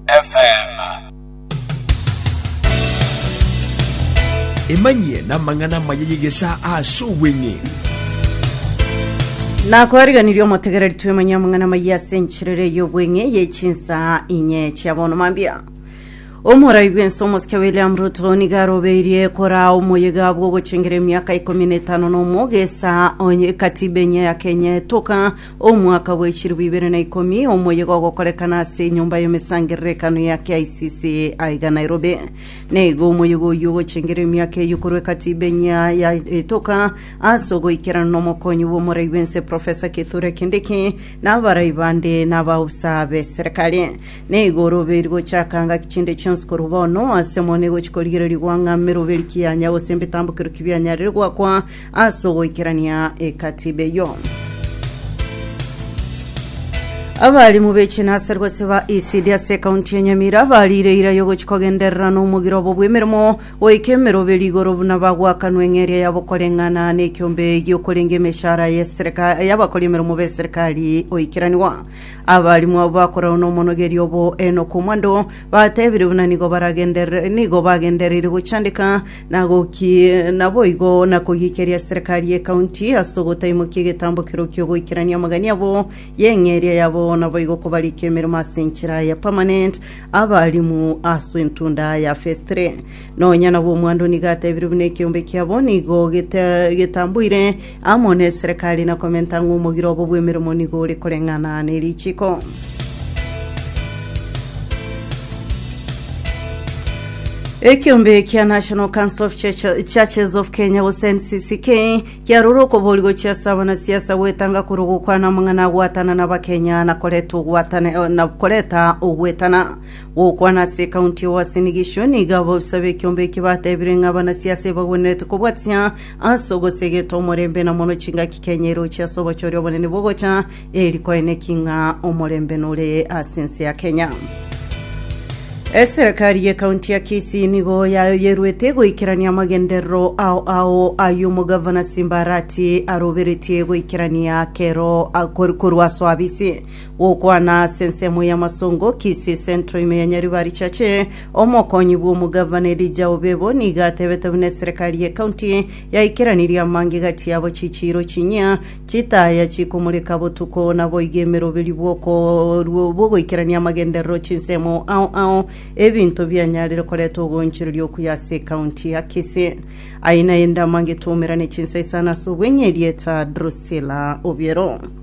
FM. Emanyie namang'ana amaya y'egesaa ase obweng'e. nakwariganirie omotegereri twemanya amang'ana maiya ase enchirere y'obweng'e yechinsa inye chia bono mambia omorai bwense omosike william ruto niga arobeirie kora omoyega bw'ogochengera emiaka ikomi na etano na omo gesa onye katiba enye ya kenya etoka Omwaka bwe chilifu ibere na ikomi, omoyega ogokorekana ase enyomba y'emesangerero ekano ya KICC aiga Nairobi. Naiga omoyega oyio ogochengera emiaka eyio korwa Ekatiba enyia ya etoka ase ogoikerana n'omokonyi bw'omorai bw'ense Professor Kithure Kindiki na abarai bande na abaobusa b'eserekari. Naiga oroberi gochaka ngaki chinde chionsi korwa bono ase mono egochi korigereria gwang'ama eroberi kianya gose ebitambo keru kibianyarire gwakwa Ase ogoikerania ekatiba eyio, abarimu be chinasari gose ba ECD ase ekaunti ya Nyamira bariire eira yogochia kogenderera na omogiro obo bw'emeremo goika emeroberi igoro buna bagwakanwa eng'eria yabo koreng'ana nekiombe giokorenge emeshara y'esereka- y'abakori emeremo b'eserikari goikeranigwa. Abarimu abo bakorerwa n'omonogeria obo Enock Omwando batebire buna nigo baragenderere- nigo bagendereire gochandeka na gokie naboigo na kogiikeria serikari ye county ase ogotaimokia egetambo keroo kiogoikerania amagani abo y'eng'eria yabo naboigo kobarika emeremo ase enchera ya permanent abalimu ase entunda ya phase 3 nonya nabo omwando nigo atebirie buna ekeombe kiabo nigo gete- getamboire Amo neserekari na komenta ng'a omogiro obo bw'emeremo nigo ore koreng'ana ne richiiko. Ekeombe kia National Council of Church- Churches of Kenya gose NCCK kiarorire okobori gochia ase abanasiasa goetanga korwa ogokwana amang'ana agwatana na Abakenya na koreta ogwatana eh, na koreta ogwetana. Gokwana ase ekaunti ya Uasin Gishu nigo abofisa b'ekeombe eki batebire ng'a abanasiasa ebagwenerete kobwatia Ase ogosegetwa omorembe na mono chingaki Kenya eroche ase obochoria obonene bogocha, eri koeneki ng'a omorembe nore ase ense ya Kenya. Eserekari ye kaunti ya Kisii nigo yayeruete goikerania amagenderero ao ao ay'omogavana Simbarati aroberetie goikerania kero a- kor- korwa ase oabisi Gokwana ase ensemo y'amasongo, Kisii Central ime ya Nyaribari Church, omokonyi bw'omogavana Elijah Obebo nigo atebete buna eserekari y'ekaunti yaikeranirie amangega chiabo chichiiro chinyia chitaya chikomoreka botuko naboigo emeroberi bw'okoru- bw'ogoikerania amagenderero chinsemo ao ao ebinto bianyarire koreta ogoonchoreria okuya ase ekaunti ya Kisii. Aye naende amange twomerane chinsa isano ase obweng'e, erieta Drusilla Obiero.